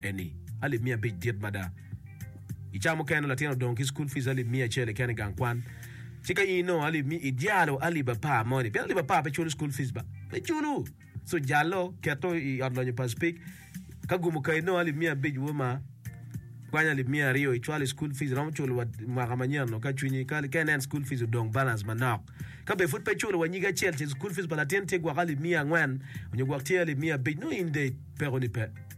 Eni, alip miya abic dit mada. I ca mukene latin odong ki school fees alip miya acel keken i gang kwan. Ci ka in onongo alip mi, idyalo alip apar moni, pien alip apar pe culo school fees ba. Pe culo! So jalo, keto i ot lonyo pa speak. Ka gumo ka inongo alip miya abic wo ma, kwany alip miya aryo icwal i school fees iromo culo wa mwaka manyen no ka cwinyi, ka, ka inen school fees odong balance manok. Ka be pud pe culo wa nyige acel ce school fees pa latin tye gwok alip miya angwen onyo gwok tye alip miya abic, nongo in dec peko ni pe.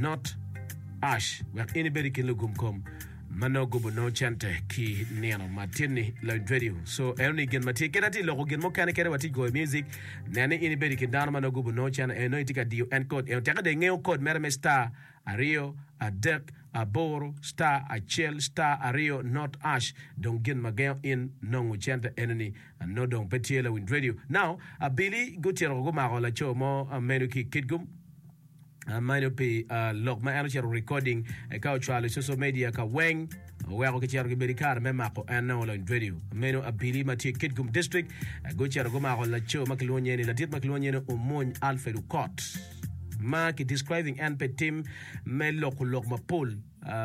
Not Ash wek in ibed i kin lugum kom ma nongo gubo nongo cente ki nino ma tin ni Lloyd Radio. So eno ni gin ma tye keda ti loko gin mukene kede wa ti goyo music. Nen ni in ibed i kin dano ma nongo gubo nongo cente eno iti ka diyo en code eno teke de ingeyo code mere me star aryo adek aboro star acel star aryo not ash dong gin ma gengo in nongo cente eno ni nongo dong pe tye Lloyd Radio. Now abili gutito gumako laco mo meno ki Kitgum. amanyo pi uh, lok ma en ocito recording eka ocwalo i social media ka weng oweko kicito kibedo kare me mako enne olony dwedi meno abili ma tye kitgum district gucito gumako laco ma kilwongo nyeni ladit ma kilwongo nyeni omony alfred okot ma ki describing en pe tim me loko lok mapol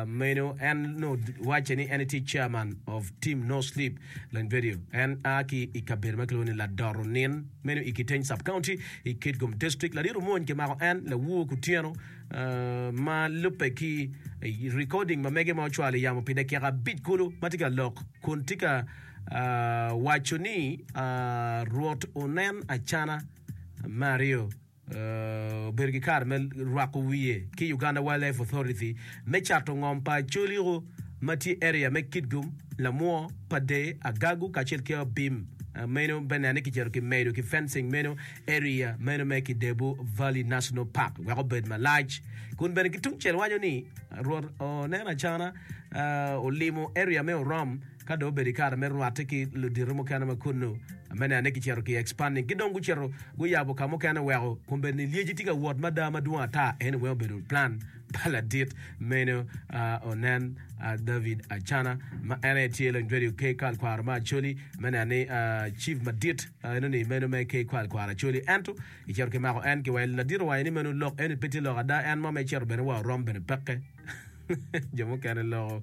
Meno en onongo wacce ni en tye chairman of Team No Sleep Land Video. En a ki i kabedo ma kilwongo ni Ladoro Nin meno i Kiteny Sub-County i Kitgum District. Larit omwony kimako en lawur kutyeno ma lubbe ki recording ma mege ma ocwalo i yamo pi dakika abic kulu ma tye ka lok kun tye ka waco ni Rwot onen acana me aryo. obedo ki kare me rwako wiye ki Uganda Wildlife Authority me cato ngom pa coliko ma tye area me Kitgum, Lamwo, Padee, Agagu kacel ki Abim meno bene ne kicito ki medo ki fencing meno area meno me Kidebu Valley National Park wek obed malac kun bene ki tungcel waco ni Rwot oneno acana olimo area me Orom Ka dong obedo i kare me rwatte ki ludito mukene ma kunnu, amene ane gicito ki Expanding ki dong gucito guyabo ka mukene weko kun bed ni lyeci tye ka wot mada madwong ata. Anyway obedo plan pa ladit meno onen David Acana ma en aye tye lony radio KKal Kwaro ma Acholi, amene ane Chief madit enoni meno me KKal Kwaro Acholi ento kicito kimako en ki wa ladit owaco ni meno lok eni pe tye lok ada en mo ma icito bene wa orom bene peke. jo mukene loko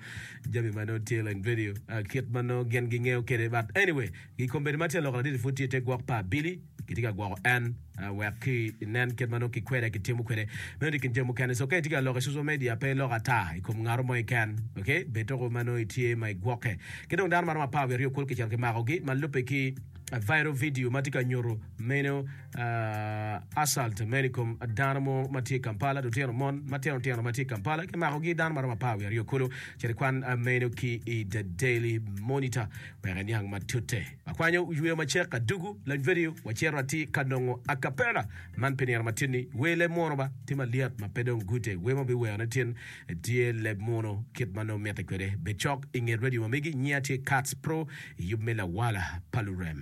jami ma nongo tye like video uh, kit ma nongo gin gingeyo kede but anyway gi kombedi ma tye loko ladidi pud tye te gwok pa abili kitye ka gwoko en uh, wek ki nen kit ma nongo kikwede kitimo kwede meno ni kin jami mukene so ka itye ka loko i social media pe iloko ata i kom ngaro mo iken okay bed toko ma nongo itye ma igwokke ki dong dano ma romo apar wiye aryo kulu kicito kimakogi ma lubbe ki uh, viral video ma tye ka nyuto meno Uh, assault Medicom dano mo ma tye i Kampala, lutino mon matino tino ma tye i Kampala kimakogi dano maromo apar wiye aryo kulu. Ceri kwan uh, meno ki i The Daily Monitor wek iniang matute. Akwanyo yweyo macek adugu lany video wacito atir ka nongo a cappella man pi nino matin-ni. Wer leb munu ba, tye malyet ma pe dong gute wer ma biwerone tin tye leb munu kit ma nongo mitte kwede. Bed cok i nget radio ma megi, nyinga tye Kats Pro i yub me lawala pa lurem.